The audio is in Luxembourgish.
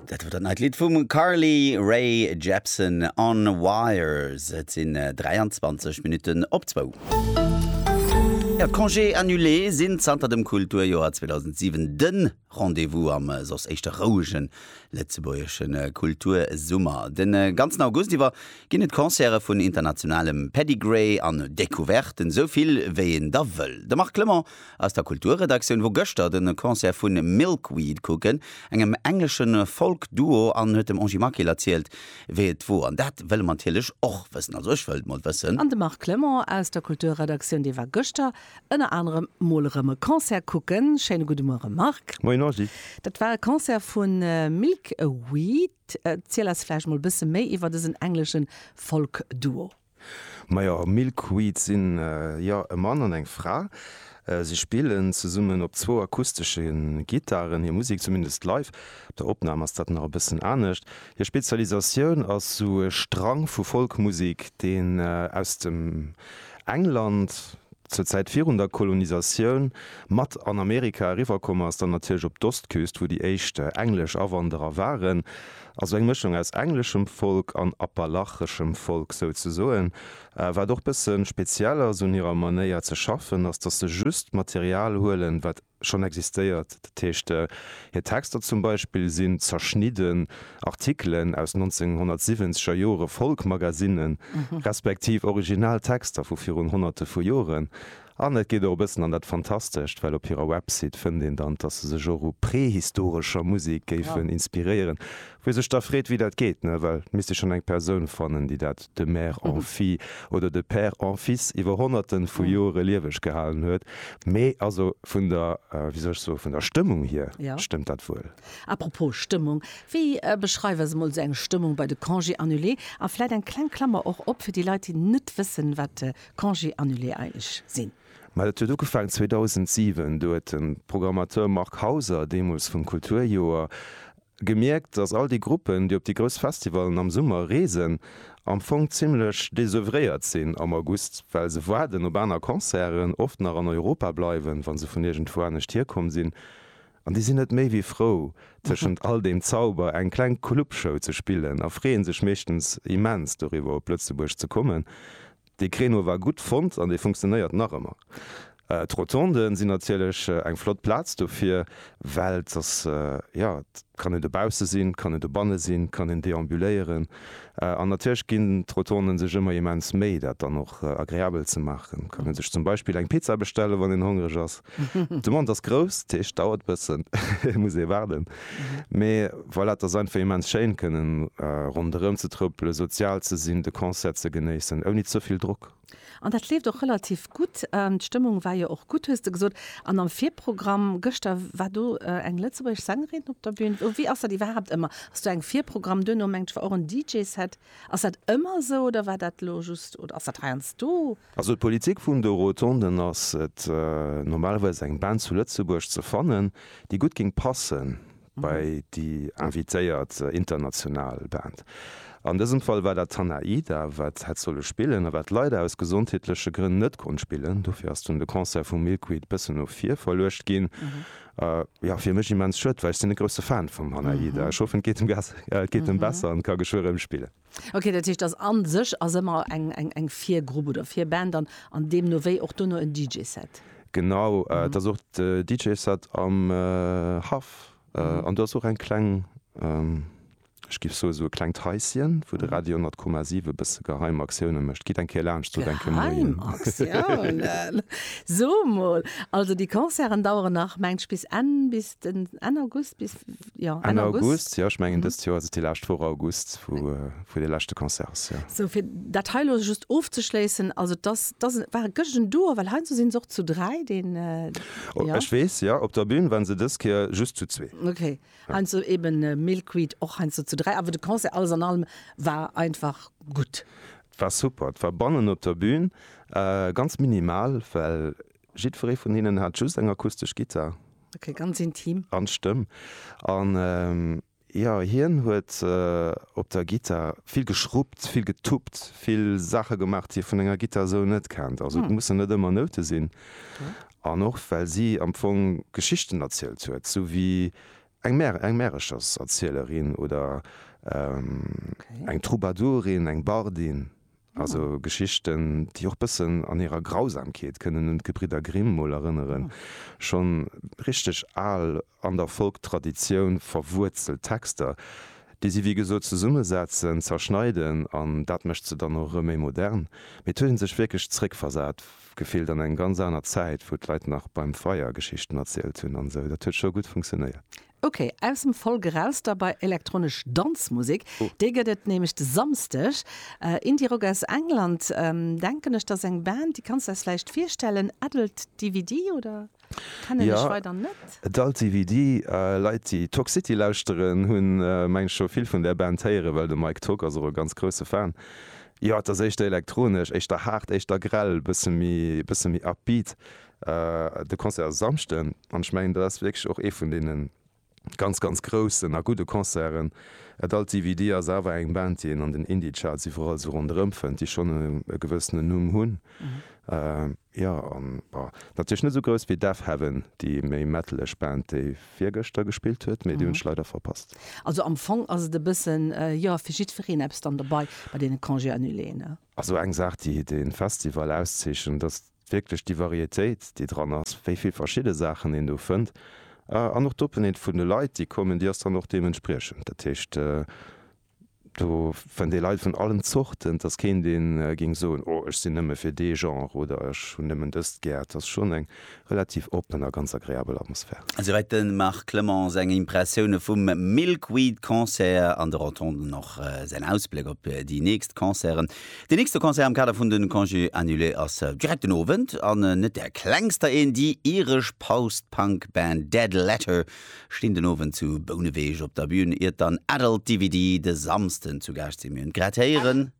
Dat war dat neit Lidd vum Carly Rae Jepsen On Wires. Et sinn 23 Minutten op zwou. Ja, d'Congés annulés sinn zanter dem Kulturjoer 2007 de Rendez-vous am äh, soss éischter rouegen lëtzebuergeschen äh, Kultursummer. Den äh, ganzen August iwwer ginn et Concerte vun internationalem Pedigree an Decouverten, esou vill wéi een der wëll. De Marc Clement Aus der Kulturredaktioun wor gëschter den Concert vun Milkweed kucken, engem engleschen Folk Duo an huet dem Angie Markel erzielt wéi et wor an dat wëlle mer natierlech och wëssen, also ech wëllt mol wëssen. An de Marc Clement aus der Kulturredaktioun dee war gëschter ënner anerem mol erëm e Concert kucken. Schéine gudde Muere Marc. Moien Angie. Dat war e Concert vu Milkweed. Erziel eis vläicht mol e bësse méi iwwer dësen engleschen Folk Duo. Majo, Milkweed sinn jo e Mann an eng Fra. Si spillen zesummen op zwou akustesche Gittaren hir Musek, zumindest live. Op der Opnam ass dat nach e bëssen anescht. Hir Spezialisatioun ass sou e Strang vu Folkmusek, deen aus dem England, zur Zäit virun der Kolonisatioun, mat an Amerika eriwwer komm ass. Dann natierlech op d'Ostküst, wou déi éischt englesch Awanderer waren. Also eng Mëschung aus engleschem Folk an appalacheschem Folk souzesoen. Wat och bësse speziell ass un hirer Manéier ze schaffen, ass datt se just Material huelen, wat schonn existéiert. Dat heescht, hir Texter zum Beispill sinn zerschnidden Artikelen aus 1970 er Jore Folk-Magasinnen, respektiv original Texter vu virun Honnerte vu Joren. An et geet och e bëssen an dat Fantastescht, well op hirer Website fënnt een dann, dass se sech och u prehistorescher Musek géifen inspiréieren. Wou ee sech da freet, wéi dat geet, ne? Well et misst ee schonn eng Persoun fannen, déi dat de mère en fille oder de père en fils iwwer honnerte vu Jore lieweg gehalen huet. Mee also vun der, wéi soll ech soen, vun der Stëmmung hier stëmmt dat wuel. Apropos Stëmmung, wéi beschreiwe se mol esou eng Stëmmung bei de Congés annulés? A vläit eng kleng Klammer och op fir déi Leit, déi net wëssen, wat Congé annulé eileg sinn. Mä dat huet ugefaangen 2007. Do huet de Programmateur Marc Hauser, deemools vum Kulturjoer, gemierkt, datt all déi Gruppen, déi op déi grouss Festivallen am Summer reesen, am Fong zimlech désœuvréiert sinn am August, well se waarden op aner Concerten, oft nach an Europa bleiwen, wa se vun iergendwou anescht hierkomm sinn. An déi sinn net méi wéi frou, tëschent all deem Zauber eng kleng Clubshow ze spillen a freeë sech meeschtens immens doriwwer, op Lëtzebuerg ze kommen. Dee Créneau war gutt fonnt an dee funktionéiert nach ëmmer. D'Rotonden sinn natierlech eng flott Plaz dofir, well et ass, jo, et kann een dobausse sinn, et kann een dobanne sinn, et kann een deambuléieren. An natierlech ginn d'Rotonden sech ëmmer immens Méi, dat dann och agreabel ze maachen. Et kann ee sech zum Beispill eng Pizza bestellen, wann een hongreg ass. D'Demande ass grouss, dat heescht, dauert e bëssen, muss ee waarden. Mee voilà, et ass einfach immens schéin, kënnen ronderëm ze trëppelen, sozial ze sinn, de Concert ze genéissen, ouni ze vill Drock. An dat leeft och relativ gutt. D'Stëmmung war jo och gutt, hues de gesot. An am Virprogramm gëschter war do eng lëtzebuergesch Sängerin op der Bün. Wéi ass dat iwwerhaapt ëmmer? Ass do eng Virprogramm, duerno mengt ech war och en DJ-Set. Ass dat ëmmer esou oder war dat elo just oder ass dat heiansdo? Also d'Politik vun de Rotonden ass et, normalerweis eng Band zu Lëtzebuerg ze fannen, déi gutt géing passen bei déi invitéiert international Band. An dësem Fall war dat Tanaida, wat hätt solle spillen a wat leider aus gesondheetleche Grënn net konnt spillen. Dofir ass dunn de Concert vu Milkweed bëssen no vir verluecht ginn. Jo, fir mech immens schued, well ech sinn e grousse Fan vum Tanaida. Ech hoffen, et geet em besser an ka geschwë rëm spillen. Ok, dat heescht ass an sech ass ëmmer eng Virgrupp oder Virband an an deemno wéi och dono en DJ-Set? Genau, et ass och de DJ-Set am Haff an do ass och eng kleng, ech giff soe sou e klengt Haisschen, wou de Radio 10,7 e bësse geheim Aktiounen mécht. Gitt eng Kéier laanscht sot eng Kéier Moien. Geheim Aktiounen? So mol, also déi Concerten daueren nach mengt bis Enn, bis den Enn August, bis? Jo, Enn Enn August. August, jo. Ech mengen dëst Joer ass et déi lescht Woch August, wou, wou dee leschte Concert ass, jo. Sou, fir dat hei elo just ofzeschléissen, also et ass, et ass, war e gëschtegen Duo, well heiansdo sinn se och zu dräi, deen, O, jo. ech weess, jo, op der Bühn waren se dës Kéier just zu zwee. Ok, heiansdo eben Milkweed och heiansdo zu dräi, awer de Concert alles an allem war einfach gutt. Et war super, et war bannen op der Bühn ganz minimal, well Jiddweree vun hinnen hat just eng akustesch Gittar. Ok, ganz intim. An d'Stëmm. An jo, hien huet op der Gittar vill geschruppt, vill getuppt, vill Saache gemaach, déi ee vun enger Gittar esou net kennt. Also et mussen net ëmmer Noute sinn. An och well si am Fong Geschichten erzielt huet, esou wéi eng Mär, eng Märechers-Erzielerin oder eng Troubadourin, eng Bardin. Also Geschichten, déi och bëssen an hirer Grausamkeet kënnen un d'Gebridder Grimm mol erënneren. Schonn richteg al, an der Folk-Traditioun verwuerzelt Texter, déi si wéi gesot zesummesetzen, zerschneiden an dat mécht se dann och erëm méi modern. Mir huet een sech wierklech zeréckversat gefillt an eng ganz aner Zäit, wou d'Leit nach beim Feier Geschichten erzielt hunn an esou. Dat huet scho gutt funktionéiert. Ok, aus dem Folk eraus da bei elektronesch Danzmusek. Déi gëtt et nämlech de Samsdeg. Indie-Rock aus England, denken ech, dat ass eng Band, déi kanns de eis vläicht virstellen, Adult DVD, oder? Kennen ech weider net. Jo, Adult DVD. Leit, déi Toxcity lauschteren, hunn, mengen ech, scho vill vun där Band héieren, well de Mike Tock ass och e ganz grousse Fan. Jo, et ass éischter elektronesch, éischter haart, éischter grell, e bësse méi upbeat. De Concert ass e Samschden an ech mengen dat ass wierklech och ee vun deene ganz ganz groussen a gudde Concerten. Et alt DVD ass awer eng Band déi een an den Indie-Charts iwwerall esou ronderëm fënnt, déi schonn e gewëssenen Numm hunn, jo an bon natierlech net esou grouss wéi Deafheaven, déi méi metaleg Band déi virgëschter gespillt huet, mee déi hunn ech leider verpasst. Also am Fong ass et e bëssen jo fir jiddwereen eppes dann dobei bei deene Congé annuléen, ne? Also eng Saach, déi de Festival auszeechent, ass wierklech déi Varietéit, déi dran ass, wéi vill verschidde Saachen een do fënnt. An och d'Openheet vun de Leit, déi kommen, déi ass dann och deementspriechend. Dat heescht, do fënnt ee Leit vun allen Zorten. Et ass keen, dee géing soen, Oh, ech sinn nëmme fir dee Genre oder ech hunn nëmmen dëst gär. Et ass schonn eng relativ oppen a ganz agreabel Atmosphär. Esouwäit de Marc Clement seng Impressioune vum Milkweed Concert an de Rotonden och säin Ausbléck op déi nächst Concerten. Deen nächste Concert am Kader vun de Congé annulé ass direkt den Owend an net där klengster een, déi iresch Post-Punk Band Dead Letter stinn den Owend zu Bouneweg op der Bün, iert dann Adult DVD de Samsden zu Gaascht sinn. Mir hunn et grad héieren.